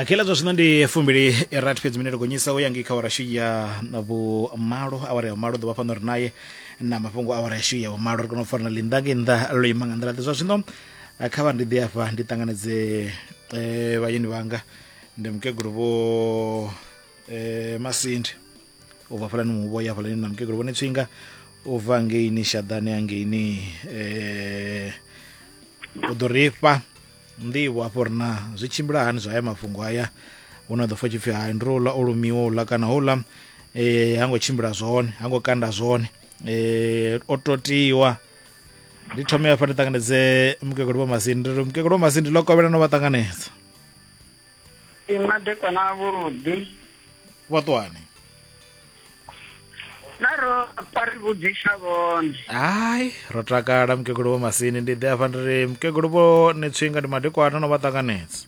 kila zwa zwino ndi fumbili rat fhedzi minete gonyisa u yangi kha awara shu ya vhu malo awara ya malo ḓuvha fhano ri naye na mafhungo a awara shu ya vhu malo ri kona u fara na linda nge nnḓa lo ima nga nḓila ḓe zwa zwino eh, kha vha ndi ḓi afha ndi ṱanganedze eh, vhayeni vhanga ndi mukegulu vho eh, masindi u bva fhalani muvho ya fhalani na mukegulu vhone tswinga u bva ngeini shaḓani ya ngeini eh, u ḓo ri fha nḓivho hafho ri na zwi tshimbila hani zwa haya mafhungo haya hu na ḓo fa tshipfi hai ndi uḽa o lumiwa uḽa kana houḽa um eh, ha ngo tshimbila zwone ha ngo kanda zwone um o totiwa ndi thome hafha ndi ṱanganedze mukegolo vho masindi ri mukegolo vho masindi ḽo kovhela no vha ṱanganedza ndi madekwana avhuḓi vha ṱwani na ro pfa ri vhudzisa vhone hayi ro takala mukegulu vho masini ndi ḓe afha ndi ri mukegulu vho ni tswinga ndi madekwana no vha ṱanganedza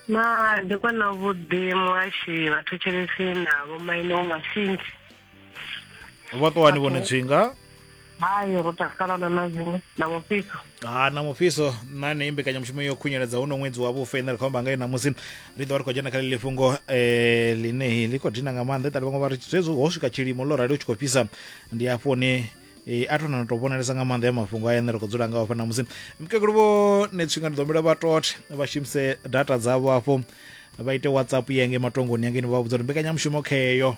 madekwana avhuḓi muhashi vhathetshelesi na vhomaine vho masinzi vha kowani vhone tswinga hai ro takala na na zwiṅwe na mufhiso ha na mufhiso na ne mbekanyamushumo yo khunyeledza huno ṅwedzi wa vhufa ine ri khou amba ngayo namusi ri ḓo vha ri khou dzhena kha ḽeḽi fhungo um ḽine ḽi khou dina nga maanḓa iṱali vhaṅwe vha ri zwezwi ho swika tshilimo ḽo rali u tshi khou fhisa ndi hafho hune eh, a thona na tou vhonalesa nga maanḓa ya mafhungo aya ane ri khou dzula ngao hafha namusi mukegulu vho netswinga ndi ḓo humbela vha tothe vha shumise data dzavho hafho vha ite whatsapp yenge matongoni yangeni vha vhudza uri mbekanyamushumo kheyo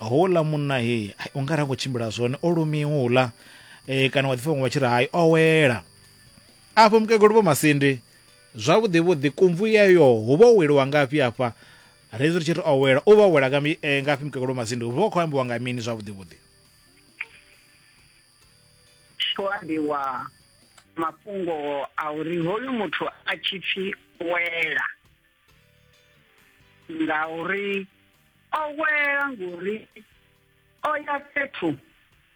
houḽa munna he ai, u nga ra ngo tshimbila zwone o lumiwa houḽa e, kana wa ḓifha vhaṅwe vha tshi ri hai o wela afho mukegulu vho masindi zwavhuḓi vhuḓi kumvu yeyo hu vha weliwa ngafhi afha ri zwi ri tshi ri o wela u vha wela nga mi, e, ngafhi mukegulu vho masindi hu vha khou ambiwa nga mini zwavhuḓi vhuḓi tsho ambiwa mafhungo a uri hoyu muthu a tshi pfi wela nga uri o wela ngori o ya fhethu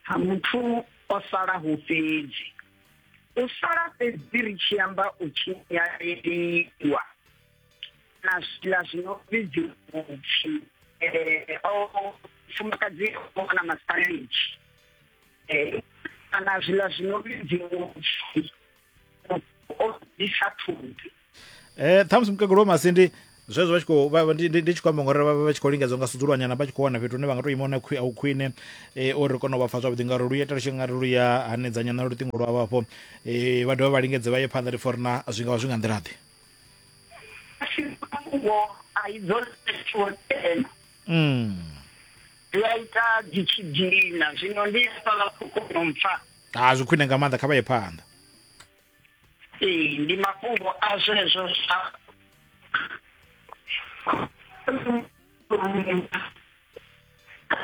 ha muthu o salaho fhedzi u sala fhedzi ri tshi amba u tshinyaleliwa na zwiḽa zwino vhidzi upfhi eh, o fumakadzi na masaletshi eh, na zwiḽa zwino vhidzi upfhi ndi shathuti eh ṱhamusi mukegulu wa masindi zwezwo vha tshi khou vha- vha- ndi ndi- ndi tshi khou amba ngori vha vha tshi khou lingedza u nga sudzulwanyana vha tshi khou wana fhethu hune vha nga tou ima hone khwi- au khwine eh, uri kone u vha pfa zwavhuḓi ngauri lu ita lutshi nga ri lu ya hanedzanyana na luṱingo lwavho afho eh, vha dovha vha lingedze vha ye phanḓa ndi for na zwi nga vha zwi nga nḓila ḓe tshifango a idzo tshiwo tena mm ndi a ita dzi tshi dina zwino ndi hafha vha khou kona u mpfa ha zwi khwine nga maanḓa kha vha ye phanḓa ee ndi mafhungo a zwezwo zwa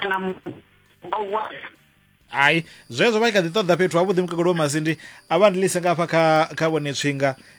kana hai zwezwo vha i kha ḓi ṱoḓa fhethu havhuḓi mukegulu wa masindi a vha ndilise nga hafha kha kha vhone tswinga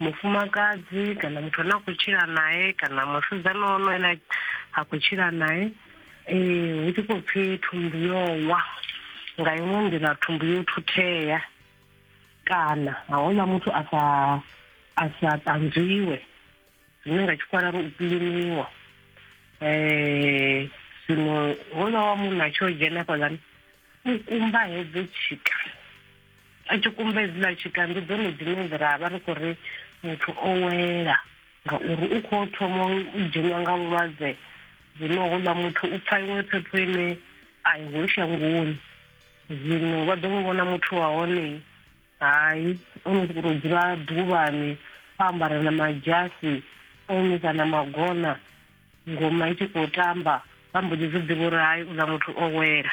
mufumakadzi kana muthu ane a khou tshila naye kana musidzana ono ene a khou tshila naye um hu tshi khou pfi thumbu yo wa nga iṅwe nḓila thumbu yo thuthea kana houḽa muthu a sa a sa ṱanzwiwe zwine nga tshikwala ri u kiliniwa um zwino houḽa wa munna tsho dzhena hafhaḽani u kumba hedzo tshika a tshi kumba hedziḽa tshika ndi dzone dzine ra vha ri khou ri muthu o wela ngauri u khou thoma u dzhenwa nga vhulwadze zwino houḽa muthu u pfa iṅwe phepho ine a i ho shangoni zwino vha ḓo mu vhona muthu wa hone hai o no sokou tou dzula ḓuvhani o ambara na madzhasi o imisa na magona ngoma i tshi khou tamba vha mbo ḓi zwi ḓivha uri hai uḽa muthu o wela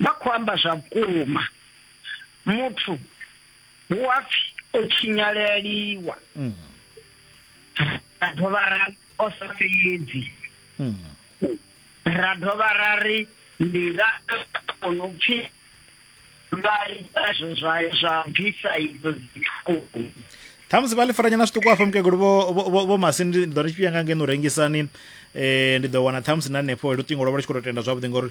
Vha khou amba zwa vhukuma. Muthu hu a pfi o tshinyaleliwa. Ra dovha ra o sa fhedzi. Ra dovha ra ri ndi nga o no pfi vha ita zwo zwa zwa bvisa idzo dzithungu. Ṱhamusi vha ḽi faranya na zwiṱuku afho mukegulu vho vho vho masi ndi ḓo ri tshifhinga nga ngeno rengisani eh ndi ḓo wana ṱhamusi na hanefho luṱingo lwo vha lu tshi khou tou tenda zwavhuḓi ngori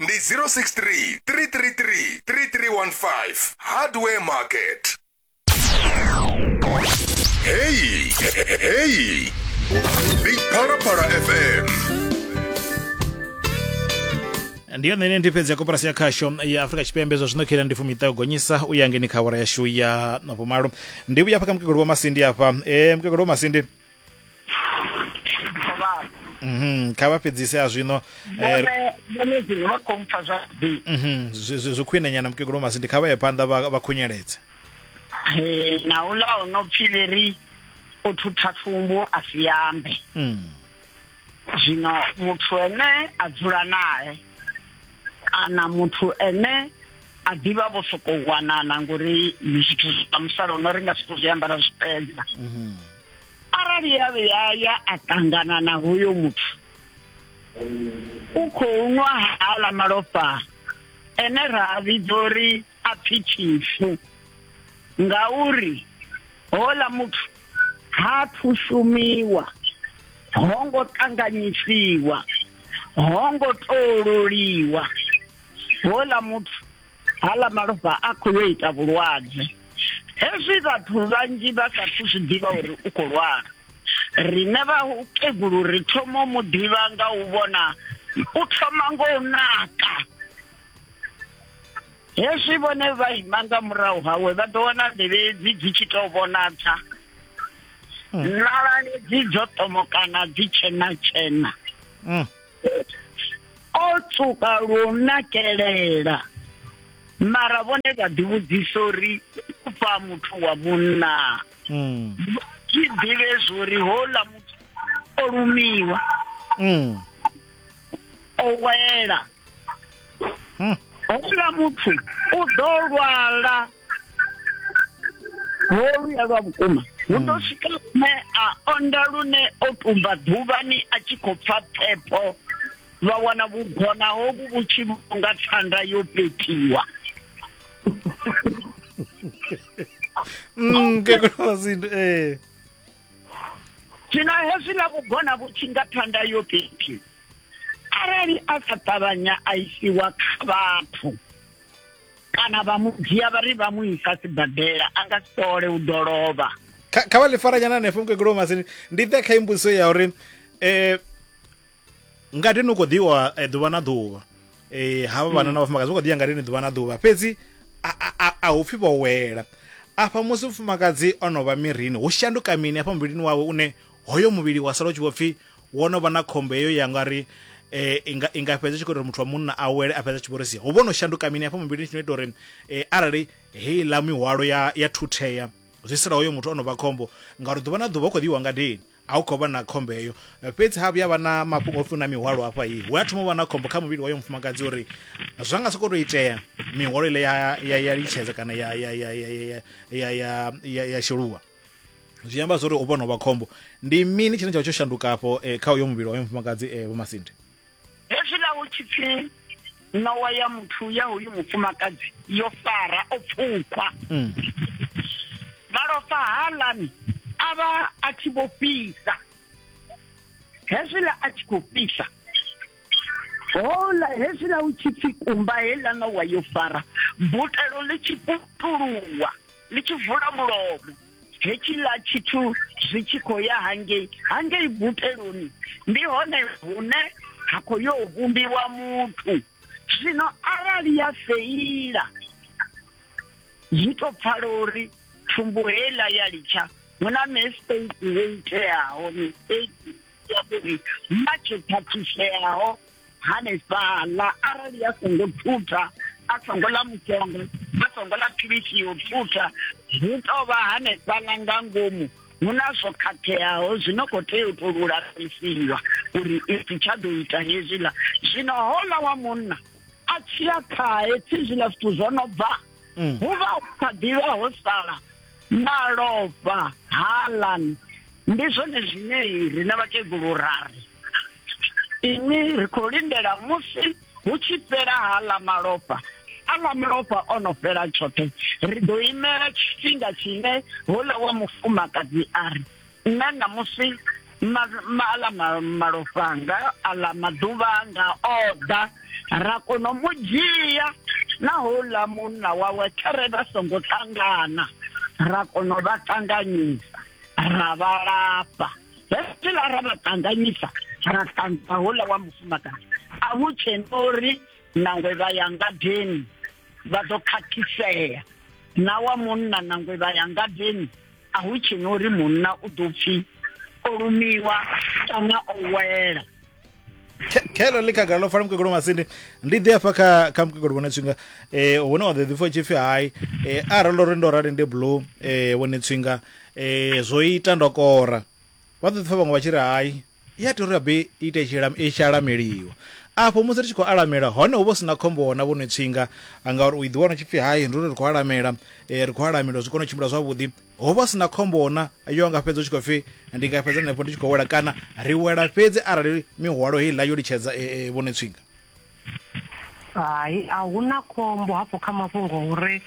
ndi 063 333 3315 hardware market heyi heyi ndi phalaphala fm ndi yone ine ndipedza koporasi ya khasho ya afrika tshipembe zwa zwino khela ndi fumiṱa yo gonyisa u ya ngeni kha awara yashu ya navhumalo ndi vhuya paka mukegolo wa masindi afha e mukegolo wa masindi Mhm, kha vha fhedzise a zwino eh, mhm, zwi khwine nyana mukegulu masindi kha vha ye phanḓa vha khunyeledze eh, na ula o no pfi leri o thutha thumbu a si ambe mm. Zwino muthu ene a dzula nae kana muthu ene a ḓivha vho sokou wanana ngori zwithu zwa musalauno ri nga sokou zwi ambara zwi fhedza mhm. arali ya vhuya ya a ṱangana na hoyo muthu u khou nwa hala malofha ene ra vhidza uri a pfi tshifu ngauri hola muthu ha thusumiwa ho ngo ṱanganyisiwa ho ngo tololiwa hola muthu hala malofha a khou yo ita vhulwadze hezwi vhathu vhanzhi vha sa thu zwi ḓivha uri u khou lwala rine vha kegulu ri thoma mu ḓivha nga u vhona u thoma ngo naka hezwi vhone vha ima nga murahu hawe vha ḓo wana ḓevhedzi dzi tshi tou vhonadza hmm. ṋalani dzi dzo tomokana dzi tshena tshena hmm. o tswuka lwo nakelela mara vhone vha ḓivhudzisa uri u fha muthu wa munna hmm. tshi ḓivhe zwori houḽa muthu o lumiwa o wela hmm. houḽa muthu u ḓo lwala ho luyelwa vhukuma hu ḓo hmm. swika ne a onda lune o tumba ḓuvhani a tshi khou pfa phepho vha wana vhugona hovhu vhu tshi vhonga thanda yo petiwa mm, ke kona masinto ee eh. zwino hezwi ḽa vhugona vhu tshi nga phanda yo fhethu arali a sa ṱavhanya a isiwa kha vhathu kana vha mu dzhia vha ri vha mu isa sibadela a nga si ṱole u ḓo lovha kha vha ḽi faranyana hanefho mukegulu wa masini ndi ḓe kha imbudziso ya uri um ngati ni khou ḓiwa eh, ḓuvha na ḓuvha eh, havha vhana na vhafumakadzi vha khou ḓiya ngati ni ḓuvha na ḓuvha fhedzi a- a- a- a hu pfi vho wela afha musi mufumakadzi o no vha mirini hu shanduka mini afha muvhilini wawe une hoyo muvhili wa sala u tshi vho pfi wo no vha na khombo heyo ya nga ri eh, i nga- i nga fhedza tshi khou ita uri muthu wa munna a wele a fhedza tshi vho ri sia hu vho no shanduka mini afha muvhilini tshino ita uri eh, arali heiḽa mihwalo ya ya thuthea zwi sala hoyo muthu o no vha khombo ngauri ḓuvha na ḓuvha u khou ḓiwa ngadeni a hu khou vha na khombo heyo fhedzi ha vhuya vha na mafhungo ofhi na mihwalo hafha hi hu a thoma u vha na khombo kha muvhili wa yo mufumakadzi uri zwa nga sokou tou itea mihwalo ile ya litshedza kana ya shuluwa zwi amba zwa uri u vhona u vha khombo ndi mini tshine tsha vha tsho shanduka afho kha uyo muvhili wa yo mufumakadzi vhomasinde Hezwiḽa hu tshi pfi ṋowa ya muthu ya hoyu mufumakadzi yo fara o pfukhwa mm. malofha haaḽani a vha a tshi vho fhisa hezwiḽa a tshi khou fhisa hola hezwiḽa hu tshi pfi kumba heḽa ṋowa yo fara butelo ḽi tshi putuluwa ḽi tshi vula mulomo hetshiḽa tshithu zwi tshi khou ya hangei hangei buteloni ndi hone hune ha khou yo vhumbiwa muthu zwino arali ya feila zwi to pfala uri thumbu heiḽa ya litsha hu na mistake yo iteaho mistake ya uri mathe thathiseaho hanefhaḽa arali a songo thutha a songo ḽa mutengo a songo ḽa philisi yo thutha hu tou vha hanefhaḽa nga ngomu hu na zwo khatheaho zwi no khou tea u tou lulamisiwa uri i si tsha ḓo ita hezwiḽa zwino houḽa wa munna a tshiya khae thi zwiḽa zwithu zwo no bva mm. hu vha hu kha ḓivha ho sala malofha halan ndi zwone zwine ri na vhakegulu rari ini ri khou lindela musi hu tshi fhela haḽa malofha aḽa malofha o no fhela tshoṱhe ri ḓo imela tshifhinga tshine houḽa wa mufumakadzi a ri na ṋamusi ma, ma aḽa ma, malofha anga aḽa maḓuvha anga oḓa ra kona mu dzhia na houḽa munna wawe khere vha songo ṱangana ra kona u vha ṱanganyisa ra vha lafha hezwiḽa ra vha ṱanganyisa ra ṱanza houḽa wa mufumakadzi a hu tshena uri nangwe vha ya ngadeni vha ḓo khakhisea na wa munna nangwe vha ya ngadeni a hu tshi no ri munna u ḓo pfi o lumiwa kana o wela khelo ḽi khagala ḽo fana mukegulu masindi ndi ḓi afha kha kha mukegulu vhone tswinga eh hune wa ḓo ḓi fo tshipfi hai eh arali ndo ri ndo rali ndi blue eh vhone tswinga eh zwo ita ndokora Vha ḓo ḓi pfa vhaṅwe vha tshi ri, Hai, i a tea uri rabi i ite i tshi alameliwa. Afho musi ri tshi khou alamela hone hu vha hu si na khombo-ho na vho no i tswinga, ngauri u i ḓiwana u tshi pfi, Hai, ndi uri ri khou alamela, ri khou alamela zwi kone u tshimbila zwavhuḓi. Ho vha hu si na khombo-ho na yo a nga fhedza u tshi khou pfi ndi nga fhedza henefho ndi tshi khou wela, kana ri wela fhedzi arali mihwalo heiḽa yo litshedza vho no i tswinga. Hai, a hu na khombo hafho kha mafhungo a uri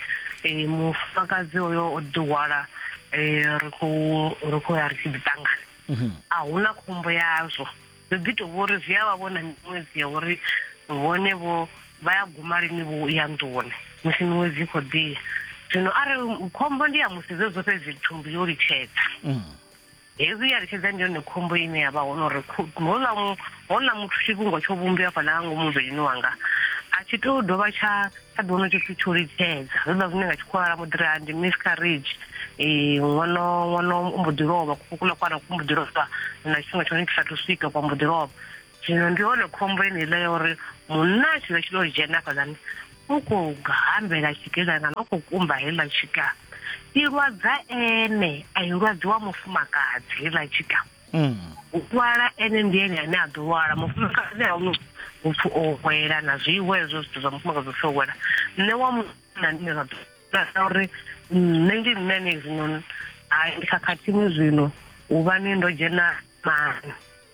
mufumakadzi oyo o ḓihwala ri khou ri khou ya ri tshi ḓi ṱangana mhm. a hu na khombo yazwo zwi ḓi tou vhori zwi a vha vhona miṅwedzi ya uri vhone vho vha ya guma lini vho ya nḓuni musi miṅwedzi i khou ḓiya zwino arali khombo ndi ya musi zwe zwo fhedzi thumbu yo litshedza mhm. Hezwi u eletshedza ndi yone khombo ine ya vha hone uri houḽa houḽa muthu tshivhungo tsho vhumbiwa fhaḽa nga ngomu muvhilini wanga a tshi tou dovha tsha tsha ḓiwana u tshi pfi tsho litshedza zwiḽa zwine nga tshikhuwa ra mbo ḓi ri ha ndi miscarriage um ṅwana ṅwana u mbo ḓi lovha kuḽa kwana ku mbo ḓi lovha na tshifhinga tsha hone tshi sa thu swika kwa mbo ḓi lovha zwino ndi hone khombo yeneiḽa ya uri munna a tshivha tshi to dzhena fhaḽani u khou hambela tshigela kana u khou kumba heiḽa tshika i lwadza ene a i lwadziwa mufumakadzi heiḽa tshika mm. u lwala ene ndi ene ane a ḓo lwala mufumakadzi a uno upfi o wela na zwiiwe hezwo zwithu zwa mufumakadzi upfi o wela nṋe wa munna ndi ne ra ḓo aa uri nṋe ndi nṋe ne zwino hai ndi khakhathini zwino u vha ni ndo dzhena mani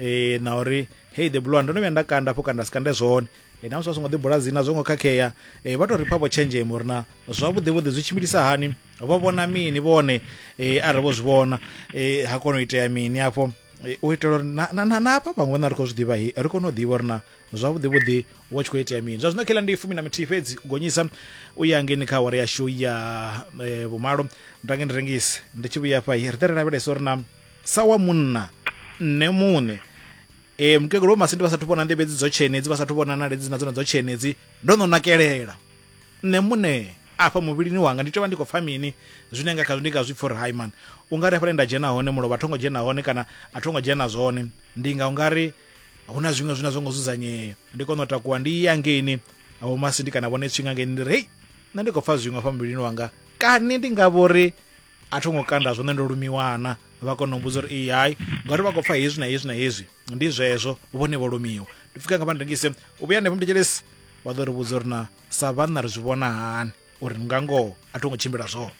e, na uri hey the blue ndo no vhuya nda kanda fho kanda si kande zwone e, na musi vha songo ḓibula dzina zwo ngo khakhea e, vha tou ri phavho tshenzhemo uri na zwavhuḓivhuḓi zwi tshimbilisa hani vho vhona mini vhone e, arali vho zwi vhona e, ha kona u itea mini afho e, u itela uri na- na- na- na hafha vhaṅwe na ri khou zwi ḓivha hi ri kone u ḓivha uri na zwavhuḓivhuḓi wo tshi khou itea mini zwa zwino khela ndi fumi na mithihi fhedzi u gonyisa u ya ngeni kha awara yashu ya eh, vhumalo ndange ndi rengise ndi tshi vhuya fha hi ri ḓe ri lavhelesa uri na sa wa munna nṋe muṋe e mukegulu vho masindi vha sathu vhona ndebedzi dzo tshenedzi vha sathu vhona naledzi na dzone dzo tshenedzi ndo no nakelela nṋe muṋe afha muvhilini wanga ndi tea vha ndi khou pfha mini zwine nga khazwo ndi nga zwi pfha uri hai man u nga ri hafhale nda dzhena hone mulovha a thongo dzhena hone kana a thongo dzhena zwone ndi nga u nga ri hu na zwiṅwe zwine zwo ngo dzudzanyea ndi kone u takuwa ndi ya ngeini vho masindi kana vhone tshinga ngeini ndi ri hei nṋe ndi khou pfha zwiṅwe hafha muvhilini wanga kani ndi nga vho ri a tho ngo kanda zwone ndo lumiwana vha kona u mbudza uri iyi hai ngauri vha khou pfa hezwi na hezwi na hezwi ndi zwezwo vhone vho lumiwa ndi pfika nga vha ndengise u vhuya nefho mtekelesi vha ḓo ri vhudza uri na sa vhanna ri zwi vhona hani uri nga ngoho a tho ngo tshimbila zwone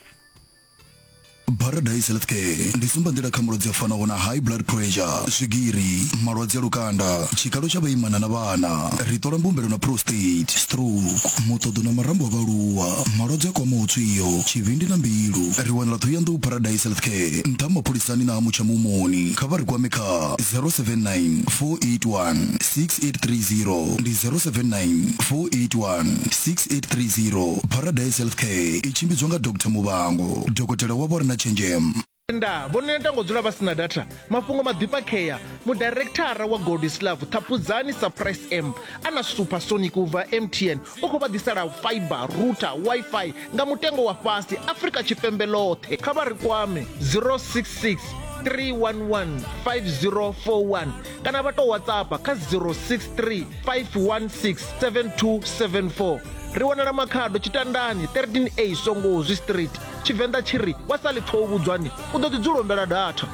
paradise health care ndi tsumbanḓila kha malwadze a fanaho na high blood pressure swigiri malwadze a lukanda tshikalo tsha vhaimana na vha vhana ri ṱola mbumbelo na prostate stroke muṱoḓo na marambo a vhaaluwa malwadze a kwamaho tswio tshivhindi na mbilu ri wanala ṱhohoyanḓou paradise health care nṱha mapholisani na ha mutsha muumoni kha vha ri kwame kha 079 481 6830 ndi 079 481 6830 paradise health care i tshimbidzwa nga dr muvhango dokotela wavho a re na tshenzhemo Tenda vho neta ngo dzula vha si na data. Mafhungo maḓifhakhea, Mudairikthara wa Goldislav Thapudzani Surprise M a na Super Sonic u bva MTN u khou vha ḓisela fibre, router, Wi-Fi nga mutengo wa fhasi Afrika Tshipembe ḽoṱhe. Kha vha ri kwame 066 311 5041 kana vha tou WhatsAppa kha 063 516 7274. Ri wanala Makhado, Tshitandani 13A Songo Zwi Street. Tshivenḓa tshi ri wa sa ḽipfa u vhudzwani u ḓo ḓi dzula humbela datha.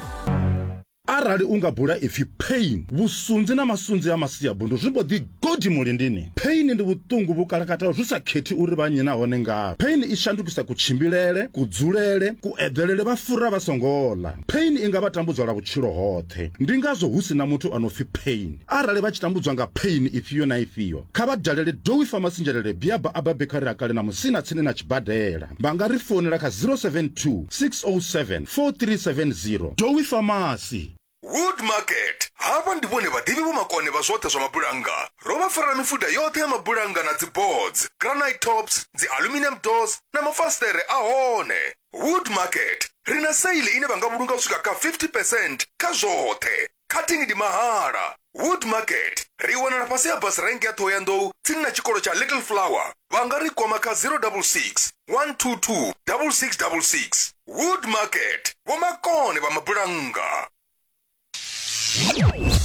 Arali u nga bula ipfi pain, vhusunzi na masunzi a masiabundu zwi mbo ḓi godi mulindini. Pain ndi vhuṱungu vhu kalakataho zwi sa khethi uri vha nnyi nahone ngafhi. Pain i shandukisa kutshimbilele, kudzulele, kueḓelele vha fura vha songo ḽa. Pain i nga vha tambudza lwa vhutshilo hoṱhe. Ndi ngazwo hu si na muthu a no pfi pain. Arali vha tshi tambudzwa nga pain ifhio na ifhio, kha vha dalele Dowie Pharmacy Njelele Biaba Abba Bakery ha kale na Musina tsini na tshibadela. vha nga ri founela kha 072 607 4370. Dowie Pharmacy. Wood Market, Havha ndi vhone vhaḓivhi vho makone vha zwoṱhe zwa mabulannga. Ro vha farela mifuda yoṱhe ya mabulannga na dzi boards, granite tops, dzi aluminium doors na mafasiṱere a hone. Wood Market, Ri na sale ine vha nga vhulunga u swika kha 50 percent kha zwoṱhe. Cutting ndi mahala. Wood Market ri i wanala fhasi ha bus rank ya Thohoyandou tsini na tshikolo tsha Little Flower. Vha nga ri kwama kha 066 122 6666. Wood Market, Vhomakone vha mabulannga.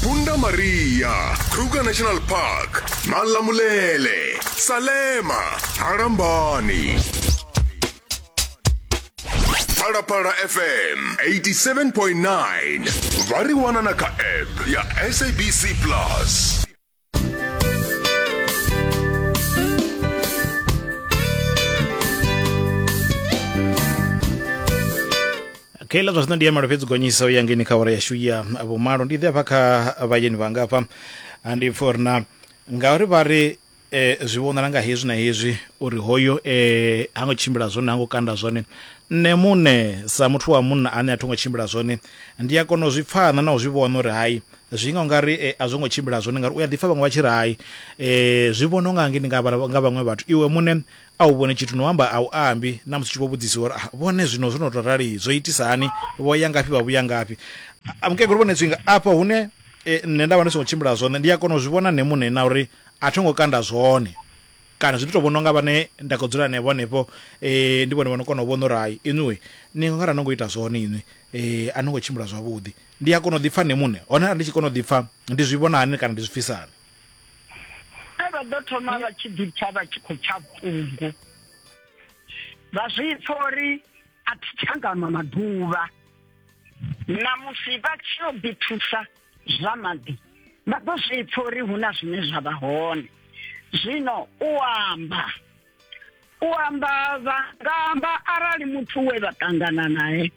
Punda Maria, Kruger National Park, Malamulele, Salema, ha Lambani. phalaphala fm 87.9 vha ri wana na kha app ya sabc plus kheila zwa zwino ndi ya malo fhedzi gonyisa u ya ngeni kha hora yashu ya vhumalo ndi ḓe afha kha vhayeni vhanga afha ndi pfha uri na ngauri vha ri E, zwi vhonala nga hezwi na hezwi uri hoyu e, ha ngo tshimbila zwone, ha ngo kanda zwone. Nṋe muṋe sa muthu wa munna ane a tho ngo tshimbila zwone, ndi a kona u zwi pfa na na u zwi vhona uri hai, zwi nga u nga ri e, a zwo ngo tshimbila zwone ngauri u a ḓi pfa vhaṅwe vha tshi ri hai, e, zwi vhona u nga ngei nga, nga vhaṅwe vhathu iwe muṋe a u vhoni tshithu, na u amba a u ambi na musi u tshi vho vhudzisiwa uri ah, vhone zwino zwo no tou rali zwo itisa hani, vho ya ngafhi vha vhuya ngafhi. A, mukegulu Vhonetswinga, afha hune e, nṋe nda vha ndi songo tshimbila zwone, ndi a kona u zwi vhona nṋe muṋe na uri A tho ngo kanda zwone. Kana zwi ḓi tou vhona u nga vhane nda khou dzula navho henefho ndi vhone vho no kona u vhona uri hai inwi ni nga ra no ngo ita zwone inwi, a no ngo tshimbila zwavhuḓi. Ndi a kona u ḓipfa nṋe muṋe hone arali ndi tshi kona u ḓipfa ndi zwi vhona hani kana ndi zwi pfisa hani? A vha ḓo thoma vha tshi ḓipfa vha tshi khou tsha vhuṱungu, vha zwi pfa uri a thi tsha nga nwa maḓuvha. Ṋamusi vha tshi yo ḓithusa. zwa maḓi vha ḓo zwi pfa uri hu na zwine zwa vha hone zwino u amba u amba vha nga amba arali muthu we vha ṱangana naye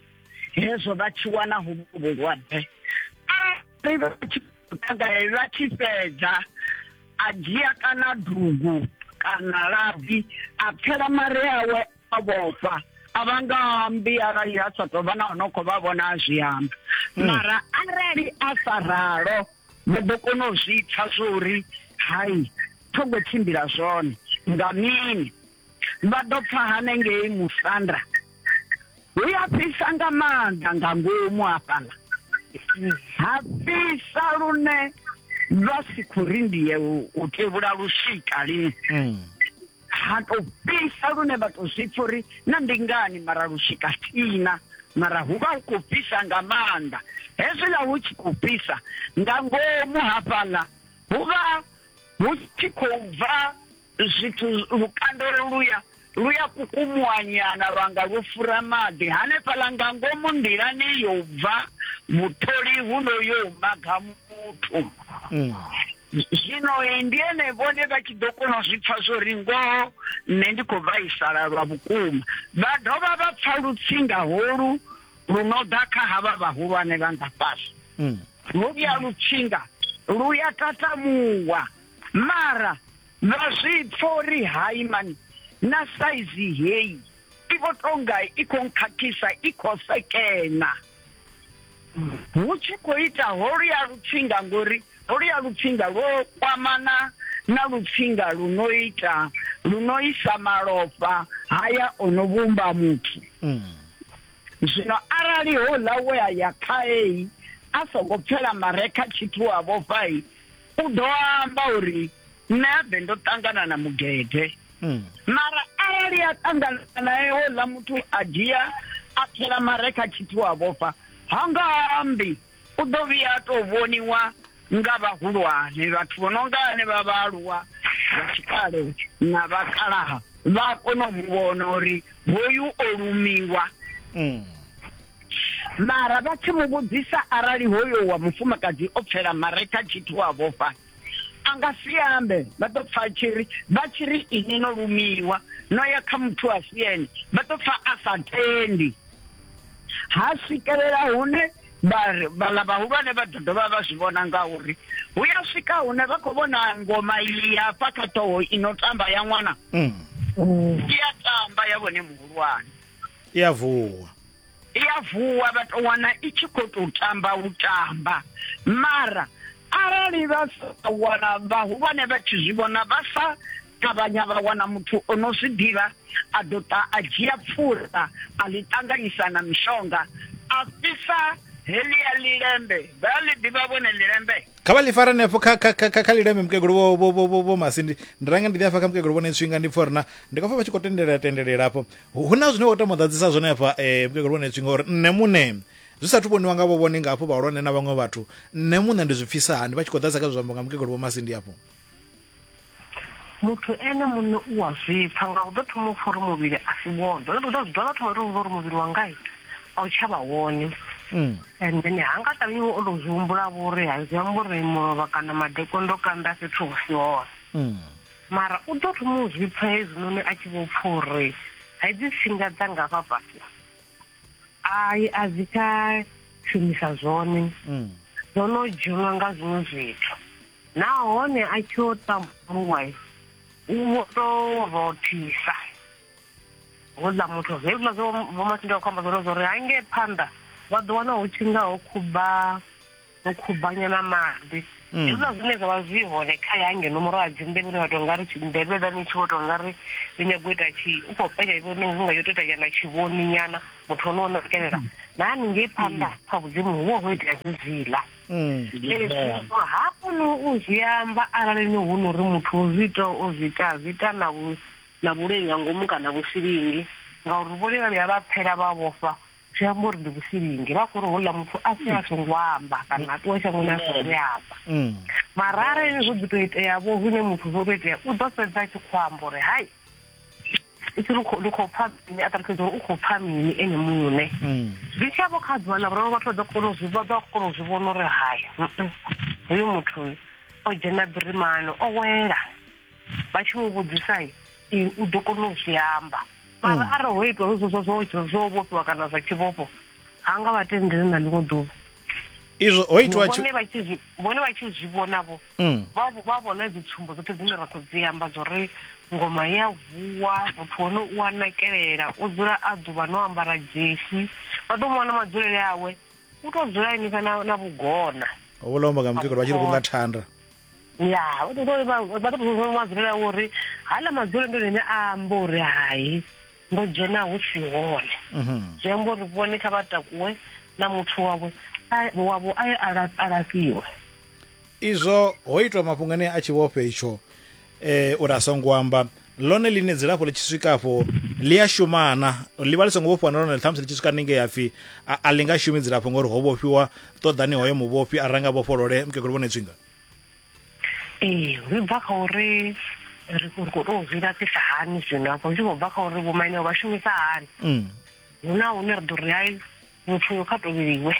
hezwo vha tshi wana hu vhulwadze arali vha tshi ṱangana vha tshi fhedza a dzhia kana dugu kana labi a pfela mare awe a vhofha a vha nga ambi arali ha sa tou vha na no khou vha vhona a zwi amba hmm. mara arali a sa ralo vha ḓo kona u zwi pfa zwo uri hai ṱhogo tshimbila zwone nga mini vha ḓo pfa hanengei musanda hu ya fhisa nga maanḓa nga ngomu hafhaḽa ha fhisa lune vha si khou ri ndiye u tevhula lu swika lini hmm. ha to fhisa lune vha to zwi pfa uri na mbingani mara lushika thina mara hu vha hu khou fhisa nga maanḓa hezwiḽa hu tshi khou fhisa nga ngomu hafhaḽa hu vha hu tshi khou bva zwithu lukando luya luya kukumuwanyana lwanga lu fura maḓi hanefhaḽa nga ngomu nḓilani yo bva vhutholi huno yo maga muthu mm. zwino ndi ene vhone vha tshi ḓo kona u zwi pfa zwo ri ngoho nṋe ndi khou vhaisala lwa vhukuma vha dovha vha pfa lutsinga holu lu no ḓa kha havha vhahulwane vha nga fhasi mm. luvhuya lutsinga lu ya tatamuwa mara vha zwi pfa uri haimani na saizi heyi i vho tonga i khou nkhakhisa i khou sekena hu tshi khou ita holuya lutsinga ngori holuya lutsinga lwo kwamana na lutsinga lu no ita lu no isa malofha haya o no vhumba muthu mm. zwino arali houḽa we a ya khaei a songo pfela mare kha tshithu a vhofhai U ḓo amba uri nṋe a ḓe ndo ṱangana na mugede. Mm. Mara arali a ṱangana nae houḽa muthu a dzhia a phela mare kha tshithu a vhofha, ha nga ambi u ḓo vhuya a tou vhoniwa nga vhahulwane, vhathu vho no nga henevha vhaaluwa vha tshikale na vhakalaha vha a kona u mu vhona uri hoyu o lumiwa. Mm. Mara vha tshi mu vhudzisa arali hoyo wa mufumakadzi o pfela mare kha tshithu a vhofha, a nga si ambe. Vha ḓo pfa a tshi ri, Vha tshi ri inwi no lumiwa no ya kha muthu a si ene. Vha ḓo pfa a sa tendi. Ha swikelela hune vhare vhaḽa vhahulwane vha ḓo dovha vha zwi vhona ngauri hu ya swika hune vha khou vhona ngoma iyi hafha kha ṱhoho i no tamba ya ṅwana mm. i ya tamba ya vhone muhulwane i ya vuwa i ya vuwa vha to wana i tshi khou tou tamba u tamba mara arali vha sa wana vhahulwane vha tshi zwi vhona vha sa ṱavhanya vha wana muthu o no zwi ḓivha a ḓo ṱa a dzhia pfura a ḽi ṱanganyisa na mishonga a fhisa heḽia ḽilembe vha ḽi ḓivha vhone ḽilembe kha vha ḽi fara hanefho kha kha kha kha ḽilembe mukegulu vho vho vho vho masindi ndi ranga ndi ḓi afha kha mukegulu vhone tswinga ndi pfha uri na ndi khou pfha vha tshi khou tendelela tendelela afho hu na zwine wa tama ḓadzisa zwone hafha um eh, mukegulu vhonetswi ngauri nṋe muṋe zwi sathu vhoniwa nga vho vhone nga hafho vhahulwane na vhaṅwe vhathu nṋe muṋe ndi zwi pfisa hani vha tshi khou ḓadza kha zwiambo nga mukegulu vho masindi hafho muthu ene muṋe u wa zwi pfa nga u ḓo thoma u pfa uri muvhili a si wone ri ḓo zwi dovha thoma ri vhudza uri muvhili wa ngai a u tsha vha wone mm. and then ha nga ṱavhanyiwe o tou zwi humbula vho uri ha zwi amba uri mulovha kana madekondo kanda fhethu hu si hone mm. Mara u ḓo thoma u zwi pfa hezwinoni a tshi vho pfa uri hedzi tsinga dza nga hafha fhasi ai a dzi tsha shumisa zwone mm. dzo no dzhiwa nga zwiṅwe zwithu nahone a tshi o tambuluwa u vho to rothisa houḽa muthu hezwiḽa zwo vhomasinda vha khou amba zwone zwo ri hange phanḓa vha ḓo wana hu tshi ngaho khuba u khubanya na maḓi mm. hezwiḽa zwine zwa vha zwi hone kha ya ngeno murahu a dzimbe vhone vha tou nga ri tshimbebe vha ni tshi vho tou nga ri ri nyago u ita tshi u khou penya ivo ni nga yo tou ita nyana tshivhoni nyana muthu one o nakelela mm. na haningei phanḓa kha vhudzimu hu vha ho itea zwiziḽa mm. ezwo hafhu ni u zwi amba arali ni hu no ri muthu o zwi ita o zwi ita zwi ita na na vhulei nga ngomu kana vhusilingi ngauri vhulei vha vhuya vha pfela vha vhofha zwi amba uri ndi vhusilingi vha khou ri houḽa muthu a si a mm. songo amba kana a ṱuwa shangoni a songo mm. amba mm. mara arali zwo ḓi to itea vho hune muthu zwo to itea u ḓo fhedza a tshi khou amba uri hai itshi ndi khou pfa mini a ṱalutshedza uri u khou pfa mini ene muṋe zwi tshi yavho kha ḓuvha ḽa vhurero vhathu vha ḓo kona u zwi vha ḓo kona u zwi vhona uri hai hoyu muthu o dzhena birimano o wela vha tshi mu vhudzisa u ḓo kona u zwi amba mara mm. arali ho itwa zwo vhofhiwa kana zwa tshivhofho ha nga vha tendeli na ḽiṅwe ḓuvha izwo ho itwa vhone vha tshi zwi vhone vha tshi zwi vhona vho mm. vha vha vhona dzi tsumbo dzoṱhe dzine ra khou dzi amba zwo ri ngoma ya vuwa muthu wone u a nakelela u dzula a ḓuvha no ambara dzesi vha ḓo mu wana madzulele awe u to dzula inisa na na vhugona ho vhulaomba nga mukegolo vha tshi ri vhunga thanda ya ngori vha vha tou vhona madzulele a uri hala madzulele ndo ḽine a amba uri hai ndo dzhena hu si hone mhm. zwi amba uri vhone kha vha takuwe na muthu wavho wavho a ye a lafhiwe izwo ho itwa mafhungo ane a tshivhofhe itsho eh uri a songo amba ḽone ḽine dzilafho ḽi tshi swika afho ḽi a shumana ḽi vha ḽi songo vhofhiwa na ḽone ṱhamusi ḽi tshi swika ninge ya pfhi a ḽi nga shumi dzilafho ngori ho vhofhiwa ṱoḓani hoyo muvhofhi a ranga vhofholole mukegulu vhone tswinga ee zwi bva kha uri ri khou tou zwi lafhisa hani zwino afho zwi khou bva kha uri vhomaine vha shumisa hani mm. hu na hune ri ḓo ri hai muthu uyo kha tovheliwe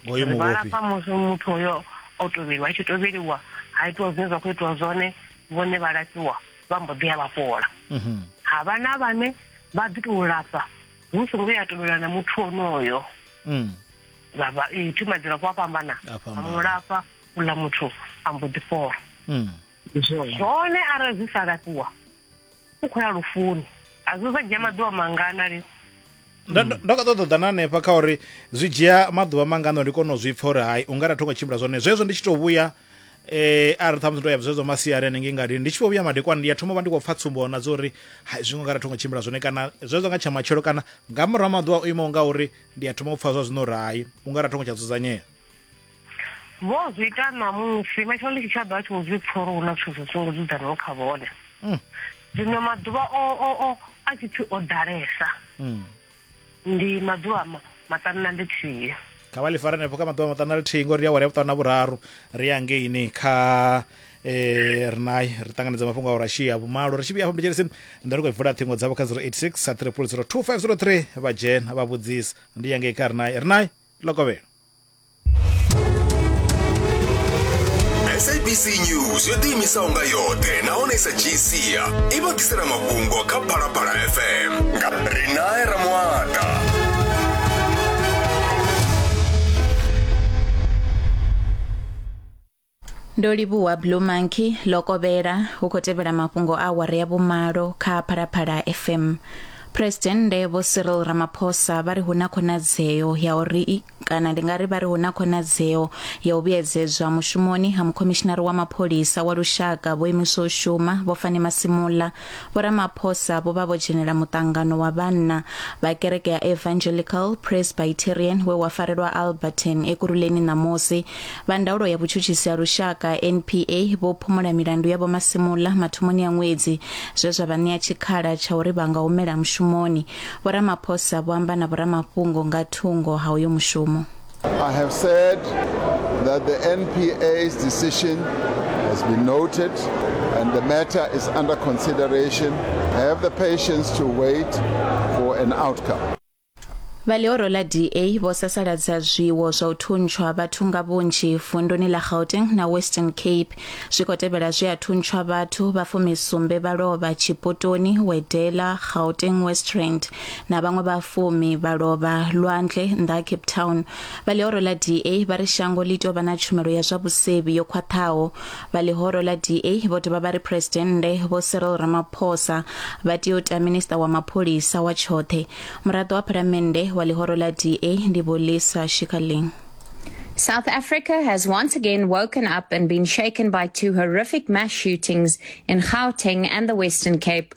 hoyo muvhofhi musi muthu uyo o tovheliwa a tshi tovheliwa ha itiwa zwine zwa khou itiwa zwone vhone vha lafhiwa vha mbo ḓi ya vha fhola mhm. ha vha na vhane vha ḓi tou lafha hu songo vhuya tovhelwa na muthu onoyo mm. thima dzilafho a fhambana a mu lafha uḽa muthu a mbo ḓi fhola mm. zwone arali zwi sa lafhiwa u khou ya lufuni a zwi zwa dzhia maḓuvha mangana lini ndo ndo- ndo kha ṱoḓa ḓana hanefha kha uri zwi dzhia maḓuvha mangano ndi kone u zwi pfa uri hai u nga ra thongo tshimbila zwone zwezwo ndi tshi tou vhuya eh a ri ṱhamusi ndo ya zwedzo masiari hanengei ngadini ndi tshi vho vhuya madekwana ndi ya thoma vha ndi khou pfa tsumbo na dzo uri hai zwiṅwe nga ra thongo tshimbila zwone kana zwezwo nga tsha matshelo kana nga murahu ha maḓuvha o imaho nga uri ndi ya thoma u pfa zwa zwino uri hai u nga ra thongo tsha dzudzanyea vho zwi ita ṋamusi matshelo ndi tshi tsha ḓo a tshi vho zwi pfha uri hu na zwithu zwi songo dzudzanaho kha vhone mm. zwino maḓuvha o o o a tshi pfhi o ḓalesa mm. ndi maḓuvha maṱanu na ḽithihi kha vha lifare nepo kha maḓuvha maṱanu na ḽithihi ngori ri awara ya vhuṱanu na vhuraru ri ya ngeini kha eh ri nayi ri ṱanganedza mafhungo a urashia vhumalo ri tshi vhuya fhambetshelesi nda ri khou vula ṱhingo dzavho kha 086 sa 300 2503 vha dzhena vha vhudzisa ndi ya ngei kha ri nayi ri nayi lokovhela sabc news yo ḓiimisaho nga yoṱhe nahone i sa dzhii sia i vha ḓisela mafhungo kha phalaphala fm nga rinae ramwata ndo livhuwa blue monkey ḽo kovhela hu khou tevhela mafhungo a awara ya vhumalo kha phalaphala fm phuresidennde vho cyril ramaphosa vha ri hu na khonadzeo ya uri i- kana ndi nga ri vha ri hu na khonadzeo ya u vhuyedzedzwa mushumoni ha mukhomishinari wa mapholisa wa lushaka vho imiswa u shuma vho fani masimula Vho Ramaphosa vho vha vho dzhenela muṱangano wa vhanna vha kereke ya Evangelical Presbyterian we wa farelwa Alberton Ekurhuleni ṋamusi. Vha ndaulo ya vhutshutshisi ha lushaka NPA vho phumula milandu ya Vho Masimula mathomoni a ṅwedzi zwe zwa vha ṋea tshikhala tsha uri vha nga humela mushumoni. Vho Ramaphosa vho amba na vhoramafhungo nga thungo ha uyo mushumo. I have said that the NPA's decision has been noted and the matter is under consideration. Have the patience to wait for an outcome. vha ḽihoro ḽa da vho sasaladza zwiwo zwa u thuntshwa vhathu nga vhunzhi vunduni ḽa gauteng na western cape zwi khou tevhela zwi a thuntshwa vhathu vha fumisumbe vha lovha tshipotoni wedela gauteng westrand na vhaṅwe vha fumi vha lovha lwanzhe nnḓa ha cape town vha ḽihoro ḽa da vha ri shango ḽi tou vha na tshumelo ya zwa vhusevhi yo khwaṱhaho vha ḽihoro ḽa da vho dovha vha ri phuresidennde vho serol ramaphosa vha tea u ta minista wa mapholisa wa tshoṱhe muraḓo wa phalamennde wa ḽihoro ḽa da ndi vho lisa shikaling South Africa has once again woken up and been shaken by two horrific mass shootings in Gauteng and the Western Cape,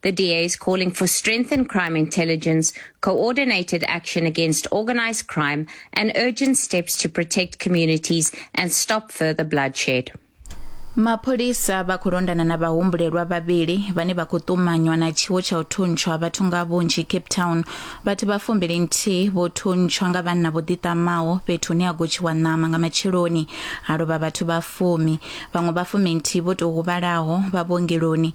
The DA is calling for strengthened crime intelligence, coordinated action against organized crime, and urgent steps to protect communities and stop further bloodshed. mapholisa vha khou londana na vhahumbulelwa vhavhili vhane vha khou ṱumanywa na tshiwo tsha u thuntshwa vhathu nga vhunzhi cape town vhathu vha fumbili nthihi vho thuntshwa nga vhanna vho ḓiṱamaho fhethu hune ha gotshiwa ṋama nga matsheloni ha lovha vhathu vha fumi vhaṅwe vha fumi nthihi vho tou huvhalaho vha vhuongeloni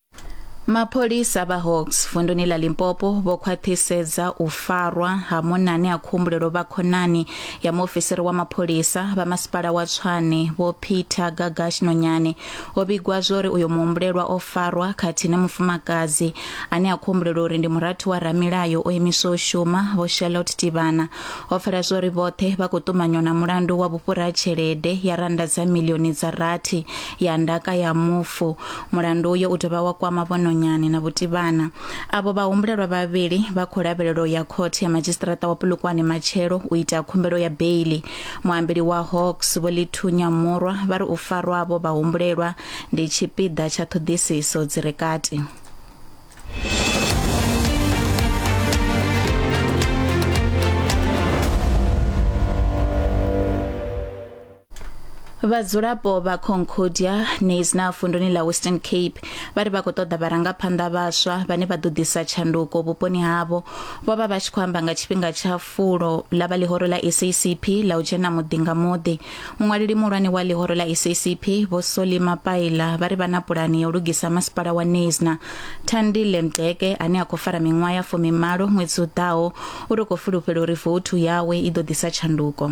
Mapholisa vha Hawks vunduni ḽa Limpopo vho khwaṱhisedza u farwa ha munna ane a khumbulelo vha khonani ya muofisiri wa mapholisa vha masipala wa Tshwane vho Peter Gagash Nonyane ho vhigwa zwori uyo muhumbulelwa o farwa khathihi na mufumakadzi ane a khumbulelo uri ndi murathu wa ramilayo o imiswa u shuma vho Charlotte Tivhana ho pfala zwori vhoṱhe vha khou ṱumanywa na mulandu wa vhufhura ha tshelede ya randa dza milioni dza rathi ya ndaka ya mufu Mulandu uyo u dovha wa kwama Vho Nonyane na Vho Tivhana. Avho vhahumbulelwa vhavhili vha khou lavhelelwa u ya khothe ya madzhisiṱiraṱa wa Polokwane matshelo u ita khumbelo ya beili. Muambeli wa Hawks Vho Lithunya Murwa vha ri u farwa havho vhahumbulelwa ndi tshipiḓa tsha ṱhoḓisiso dzi re kati. vhadzulapo vha concordia neisna vunduni ḽa western cape vha ri vha khou ṱoḓa vharangaphanḓa vhaswa vhane vha ḓo ḓisa tshanduko vhuponi havho vho vha vha tshi khou amba nga tshifhinga tsha fulo ḽa vha ḽihoro ḽa sacp ḽa u dzhena muḓi nga muḓi muṅwaleli muhulwane wa ḽihoro ḽa sacp vho solima paila vha ri vha na pulani ya u lugisa masipala wa neisna thandile mdeke ane a khou fara miṅwaha ya fumimalo ṅwedzi u ḓaho uri u khou fulufhela uri vouthu yawe i ḓo ḓisa tshanduko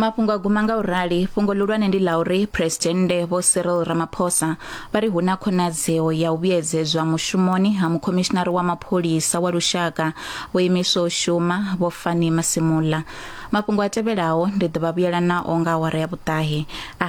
mafhungo a guma nga u rali fhungo ḽihulwane ndi ḽa uri phresidennde vho cyril ramaphosa vha ri hu na khonadzeo ya u vhuyedzedzwa mushumoni ha mukhomishinari wa mapholisa wa lushaka vho imiswa u shuma vho fani masimula mafhungo a tevhelaho ndi ḓo vha vhuyela nao nga awara ya vhuṱahe a